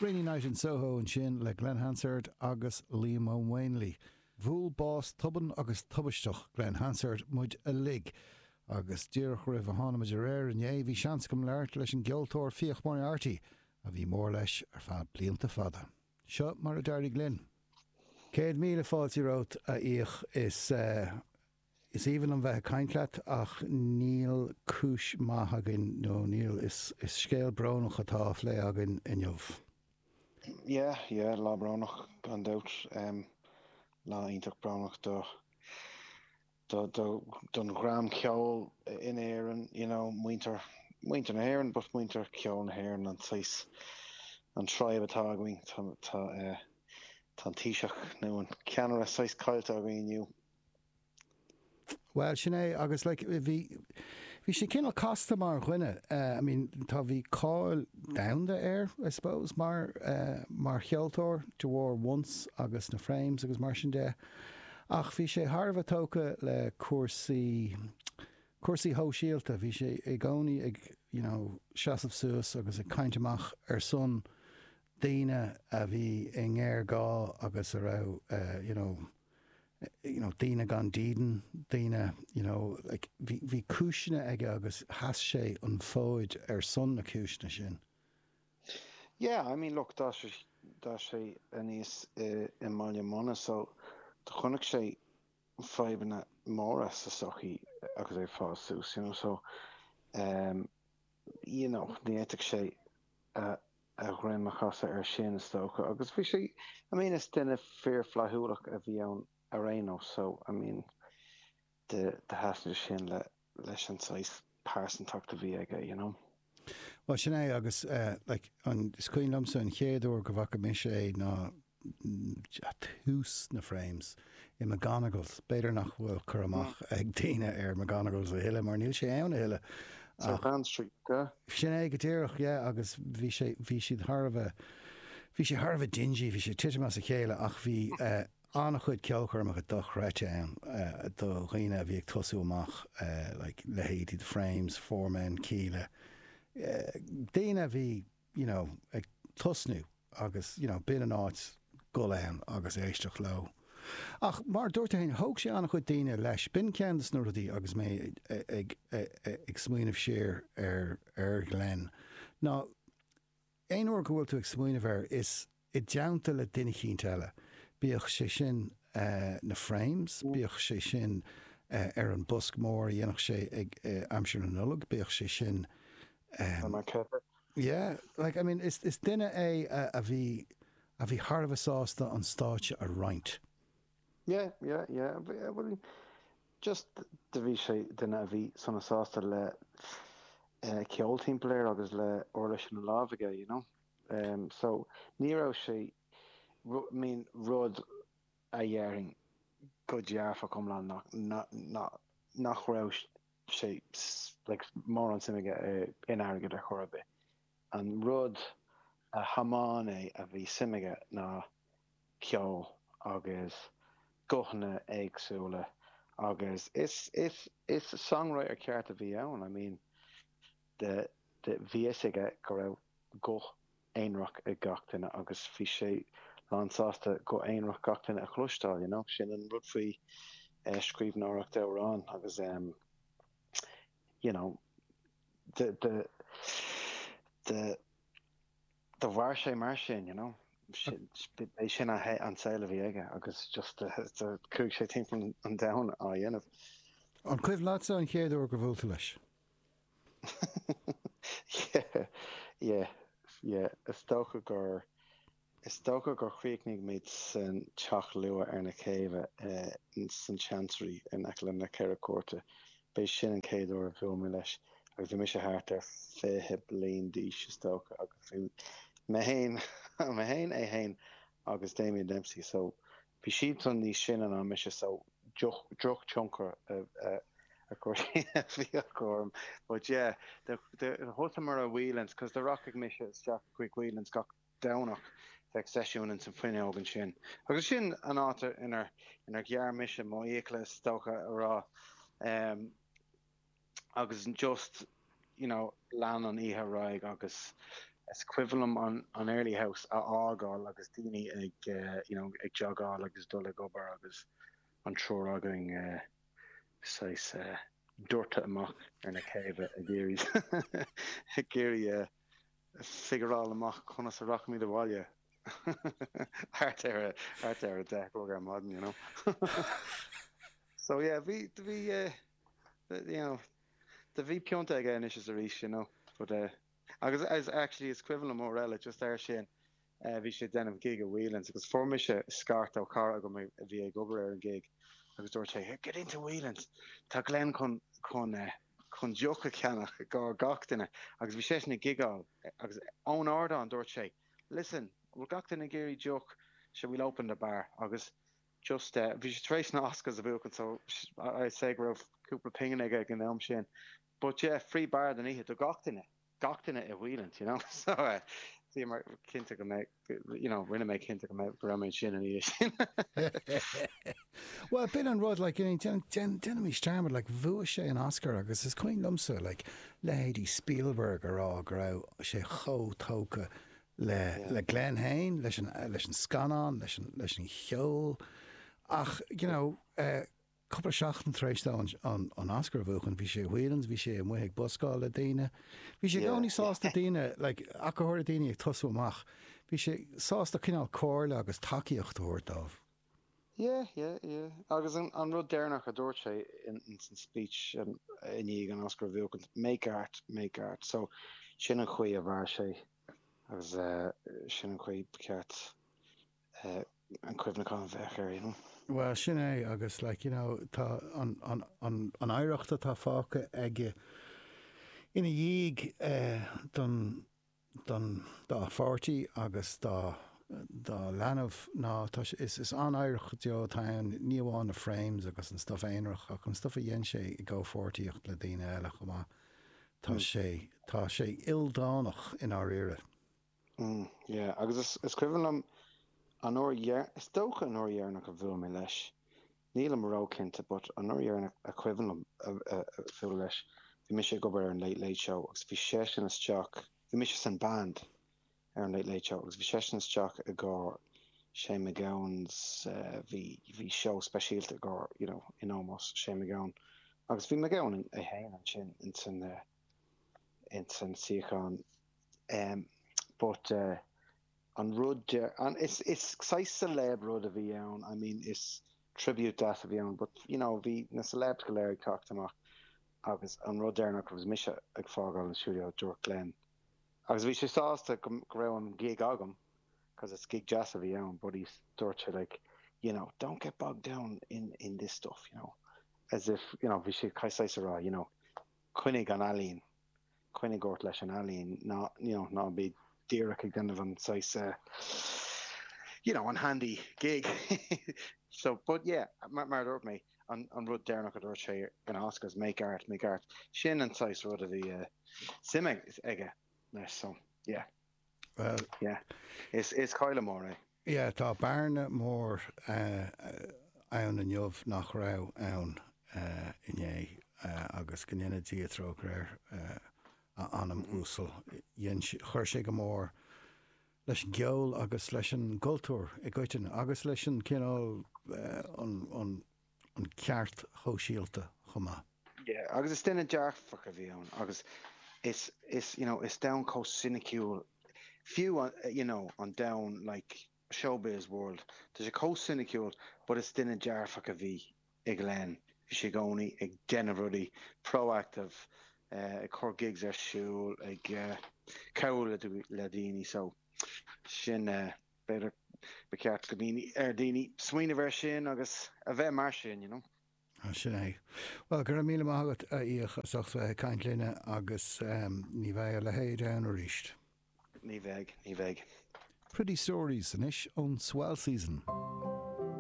Rainy Night in Soho ansin le Glen Hansard agus Liam Ó Maonlaí. Bhuail bás tobann agus tubaisteach Glen Hansard muid uilig agus díreach roimh a thánamar ar aer inné bhí seans agam labhairt leis an gceoltóir Fiach Moriarty a bhí mór leis ar feadh blianta fada. Seo mar a d'éirigh linn. Céad míle fáilte romhat, a Fhiach. Is. Is aoibhinn liom bheith ag caint leat ach níl cúis maith againn, nó níl, is scéal brónach atá á phlé againn inniu. Yeah, yeah, lá brónach gan dabht. Lá iontach brónach do, do, do, don dhream ceoil in Éirinn, you know, muintir, muintir na hÉireann but muintir ceoil na hÉireann, an saghas, an tribe atá againn. Tá, tá eh, tá an Taoiseach nó an ceannaire saghas caillte againn inniu. Bhuel, sin é agus like bhí, bhí sé cineál casta mar dhuine eh, I mean tá, bhí cáil domhanda air I suppose mar eh, mar cheoltóir de bharr Once agus na Frames agus mar sin de ach bhí sé thar a bheith tógtha le cúrsaí, cúrsaí sóisialta, bhí sé i gcónaí ag you know seasamh suas agus ag caint amach ar son daoine a bhí i ngéarghá agus a raibh eh, you know. daoine gan dídean, daoine you know like bhí cúiseanna aige agus sheas sé an fód ar son na cúiseanna sin. Yeah, I mean look d'fhás sé d'fhás sé aníos i mBaile Munna so do chonaic sé fadhbanna móra sa sochaí agus é ag fás suas you know so umm you know ní fhéadfadh sé a a dhroim a chasadh air sin, is dócha. Agus bhí sé, I mean, is duine fíor-fhlaithiúlach a bhí ann ar aon nós, so, I mean, do thaitin sé sin leis an saghas pearsantacht a bhí aige, you know. Bhuel, sin é, agus, like, an, is cuimhin liomsa an chéad uair go bhfaca mise é ná ag tús na Frames i McGonagles. B'fhéidir nach bhfuil cur amach ag daoine ar McGonagles a thuilleadh mar níl sé ann a thuilleadh ach. South Anne Street, yeah? Sin é go díreach, yeah, agus bhí sé, bhí siad thar a bheith, bhí sé thar a bheith dingy, bhí sé ag titim as a chéile ach bhí an-chuid ceolchoirmeacha dochreidte ann do dhaoine a bhí ag tosú amach, like leithéidí The Frames, Four Men, Kíla, daoine a bhí. you know, ag tosnú agus, you know, b'in an áit le dhul ann agus éisteacht leo. Ach mar dúirt tú fhéin, thóg sé an-chuid daoine leis. B'in ceann de na rudaí agus mé ag, ag, ag smaoineamh siar ar, ar Glen ná aon uair go bhfuil tú ag smaoineamh air is, i dteannta le daoine eicínt eile, bíodh sé sin na Frames, bíodh sé sin ar an Bosc Mór a dhéanfadh sé ag aimsir na Nollag, bíodh sé sin ar an Clochar. Yeah, like, I mean, is duine é a bhí, a bhí thar a bheith sásta an stáitse a roinnt. Yeah, yeah, yeah, bhuel, just, do bhí sé, duine a bhí sona sásta le ceol timpeall air agus le uirlis ina lámh aige, you know. em so ní raibh sé rud I mean rud a dhéarfainn go dearfach iomlán ná nach nach nach raibh sé like mórán suim aige in airgead ar chor ar bith an rud a thiomáin é a bhí suim aige ná ceol agus guthanna éagsúla agus is is is songwriter ceart a bhí ann I mean do bhí a fhios aige go raibh guth aonrach ag gach duine agus bhí sé lán sásta guth aonrach gach duine a chloisteáil you know. Sin an rud faoi scríbhneoireacht amhrán agus em you know do do do do mhair sé mar sin you know. Sin b'é sin a he an saol a bhí aige agus just do do chuaigh sé timpeall an domhain á dhéanamh. An cuimhin leatsa an chéad uair gur bhuail tú leis? Yeah, yeah, yeah. Is dócha gur, is dócha gur chríochnaigh muid san Teach luath ar na céibhe, san Chancery in aice le na Ceithre Cúirteanna. B'é sin an chéad uair a bhuail mé leis agus bhí mise thart ar fiche bliain d'aois is dócha agus bhí mé fhéin, mé fhéin, é fhéin agus Damien Dempsey, so Bhí siadsan níos sine ná mise so droch tionchar a bhí acu orm but yeah do thosaíomar i Whelan's cos do rachadh mise isteach chuig Whelan's gach Domhnach bheadh seisiún ins an bhfuinneog ansin agus sin an áit inar ghearr mise mo fhiacla is dócha a rá. agus an just you know lean an oíche ar aghaidh agus is cuimhin liom an an early house a fhágáil agus daoine ag you know ag jogáil agus dul ag obair agus an triúr againn saghas doirte amach ar na céibhe ag iarraidh ag iarraidh figuráil amach conas a rachaimid abhaile thart ar thart ar a deich a chlog ar maidin you know so yeah bhí bhí you know, do bhí pionta aige anois is arís, you know, but eh, agus as actually is cuimhin liom uair eile just air sin eh bhí sé ag déanamh gig i Whelan's agus fuair mise scairt ó chara agam a bhí ag obair ar an gig agus dúirt sé here get into Whelan's tá Glenn chun chun eh chun deoch a cheannach i gcomhair gach duine agus bhí seisean ag gigeáil agus ón ardán dúirt sé listen bhfuil gach duine ag iarraidh deoch sure we'll open the bar agus Just eh, bhí sé tar éis na Oscars a bhuachan so I'd say go raibh cúpla pingin aige ag an am sin. But yeah, free bar don oíche do gach duine, gach duine i Whelan's you know. So eh, bhí mé cinnte go mbeadh, you know, rinne mé cinnte go mbeadh, go raibh mé ansin an oíche sin. Well, b'in an rud like, you know, ná déanaimis dearmad like bhuaigh sé an Oscar agus is cuimhin liomsa like leithéidí Spielberg a rá go raibh sé chomh tógtha le Glenn féin, leis an scannán, leis an cheol ach you know cúpla seachtain tar éis dó an Oscar a bhuachan bhí sé i Whelan's, bhí sé amuigh ag buscáil le daoine, bhí sé i gcónaí sásta daoine like go háirithe daoine ag tosú amach, bhí sé sásta cineál comhairle agus tacaíocht a thabhairt dóibh. Yeah, yeah, yeah. Agus an rud deireanach a dúirt sé ins an speech i ndiaidh an Oscar a bhuachaint, make art, make art. So sin an chaoi a mhair sé agus sin an chaoi ba cheart an cuimhneachán a bheith air, you know. Bhuel, sin é agus like, you know, tá an oidhreacht atá fágtha aige ina dhiaidh don. don dá pháirtí agus dá dá leanbh ná tá sé, is, is an-oidhreacht go deo atá ann, ní amháin na Frames agus an stuff aonrach ach an stuff a dhein sé i gcomhpháirtíocht le daoine eile chomh maith. Tá Mm. sé, tá sé ildánach i ndáiríre. Mm, yeah, agus is, is cuimhin liom an uair dheir, is dócha an uair dheireanach a bhuail mé leis, Nílim ró-chinnte, but anuraidh ar a cuimhin liom bualadh leis, bhí mise ag obair ar an Late Late Show agus bhí seisean isteach, bhí mise san band ar an Late Late Show agus bhí seisean isteach i gcomhair Shane McGowan 's bhí, bhí seó speisialta i gcomhair, you know, in ómós Shane McGowan agus bhí McGowan é féin ansin ins an, ins an suíochán em, but eh. an rud deir an is is saghas celeb rud a bhí ann I mean is tribute dáta a bhí ann but you know bhí na celebs go léir ag teacht amach agus an rud deireanach agus mise ag fágáil an studio dúirt Glenn agus bhí sé sásta go go raibh an gig agam 'cause is gig deas a bhí ann but he's dúirt sé like you know don't get bogged down in in this stuff you know as if you know bhí sé saghas a rá you know coinnigh an ealaín Coinnigh ort leis an ealaín. Ná, you know, ná bí díreach ag déanamh an saghas eh you know, an handy gig. So, but yeah, mar, mar a dúirt mé, an, an rud deireanach a dúirt sé ag na Oscars, make art, make art, sin an saghas rud a bhí eh suim aige leis, so, yeah. Bhuel. Yeah. Is is cailleadh mór é. Yeah, tá bearna mór ann inniu nach raibh ann inné agus go ndéana Dia trócaire ar a anam uasal. Dhein sé, chuir sé go mór leis an gceol agus leis an gcultúr i gcoitinne agus leis an cineál an, an ceart shóisialta chomh maith. Yeah, agus is duine dearfach a bhí ann agus is, is, you know, is domhan chomh soiniciúil, fiú an, you know, an domhan like showbiz world, tá sé chomh soiniciúil but is duine dearfach a bhí i Glen, bhí sé i gcónaí ag déanamh rudaí, proactive, eh ag cur gigs ar siúl, ag eh cabhrú le, le daoine so sin eh. B'fhéidir ba cheart go daoine, ar daoine smaoineamh ar sin agus a bheith mar sin, you know. Ah, sin é. Bhuel, go raibh míle maith agat, a Fhiach, as ucht bheith ag caint linne agus ní bheidh a leithéid ann aríst. Ní bheidh, ní bheidh. Pretty stories anois ón Swell Season.